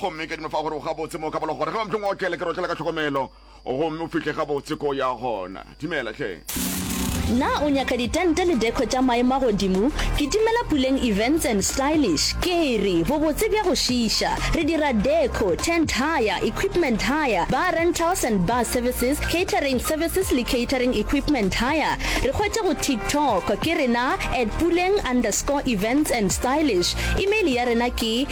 gomme ka dimofa gore o gabotse mo ka bolo gore ge ba mpheng otlele ke rotlela ka tlhokomelo gomme o fihle gabotse ko ya gona dimela hle Na o nyaka ditente le deko tša maemo a godimo? Kitimela Puleng Events and Stylish. Ke re, bobotse bja go šiiša. Re dira deko, tent hire, equipment hire, bar rentals and bar services, catering services le catering equipment hire. Re hwetše go TikTok ke rena at puleng underscore events and stylish. Email ya rena ke.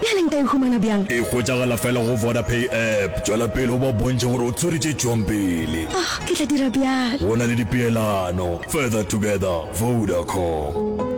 Bjale nka e humana bjang? E hwetšagala fela go Vodapay app. Tšwela pele o ba bontšhe gore o tswere tše tšwang pele. Oh, ke tla dira bjalo. Go na le dipeelano. Further together, Vodacom.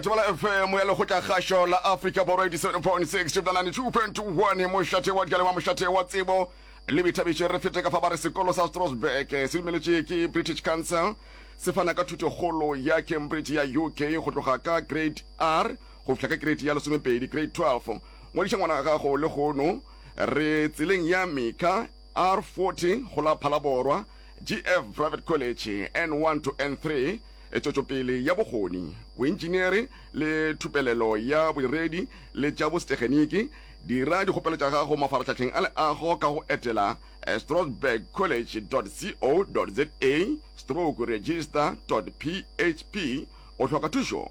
Thobela FM ya Lekgotlakgašo la Afrika Borwa 87.6 Tšebla 92.1 Mošate wa dikale wa mošate wa tsebo le boithabišo re fete ka fa ba re sekolo sa Strasbourg se dumeletše ke British Council se fana ka thuto kgolo ya Cambridge ya UK go tloga ka grade R go fihla ka kereiti ya lesomepedi, grade 12. Ngwadiša ngwana wa gago lehono. Re tseleng ya Mika, R40, go la Phalaborwa, GF Private College, N1 to N3, tšwetšopele ya bokgoni, boentšiniere le thupelelo ya bodiredi le tša bosetegeniki. Dira dikgopelo tša gago mafarahlahleng a leago ka go etela strasbourgcollege.co.za, stroke register dot php. O hloka thušo?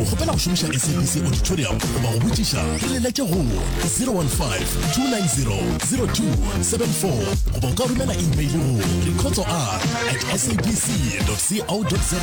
o kgopela go šomiša sabc auditorium goba go botšiša re lelete go 015-290-0274 goba o ka romela email go rekotso r at sabc co za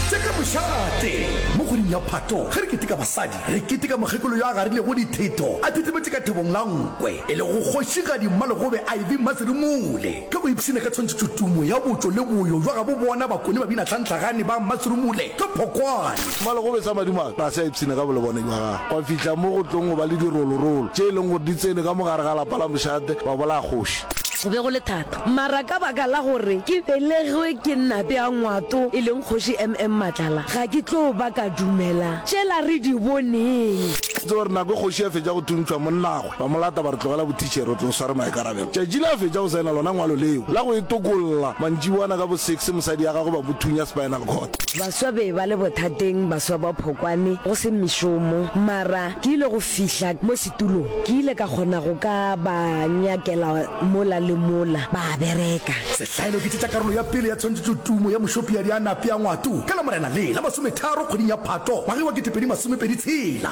tseka mošate mo kgweding ya phato ge re keteka basadi re keteka mokgekolo yo a garilego ditheto a thetemetše ka thebong la nkwe e le go kgošigadi mmalegobe iv maseremole Ge ba ipshina ka tshwantšhetšo tumo ya botšo le boyo bja gabo bona, bakone ba bina Tlhantlhagane ba mma Sirumule ka phokwane. Mma Legobe sa Madimo a tlase a ipshina ka bolebone bja gagwe, gwa fihla mo go tlong go ba le dirolorolo tše e leng gore di tsene ka mo gare ga lapa la mošate ba bolaya kgoši. Go be go le thata mara ka baka la gore ke belegwe ke Nnape ya Ngwato e leng Kgoši MM Matlala ga ke tlo ba ka dumela tšela re di boneng. Tsebe gore nako e kgoši ya fetša go thuntšhwa monna Ba mo lata ba re, Tlogela bothitšhere, o tlo sware maikarabelo. Tšatši le a fetša go saena lona ngwalo leo la go e tokolla. Mantšiboana ka bo six mosadi ya gagwe ba mo thunya spinal cord. Baswa be ba le bothateng, baswa ba phokwane, go se mešomo. Mara ke ile go fihla mo setulong, ke ile ka kgona go ka ba nyakela mola le mola, ba a bereka. Sehlaelo ke tše tša karolo ya pele ya tshwantšhetšo Tumo ya Mošopiadi a Nape ya Ngwato ka Lamorena le la masometharo kgweding ya Phato ngwageng wa ketepedi masomepedi tshela.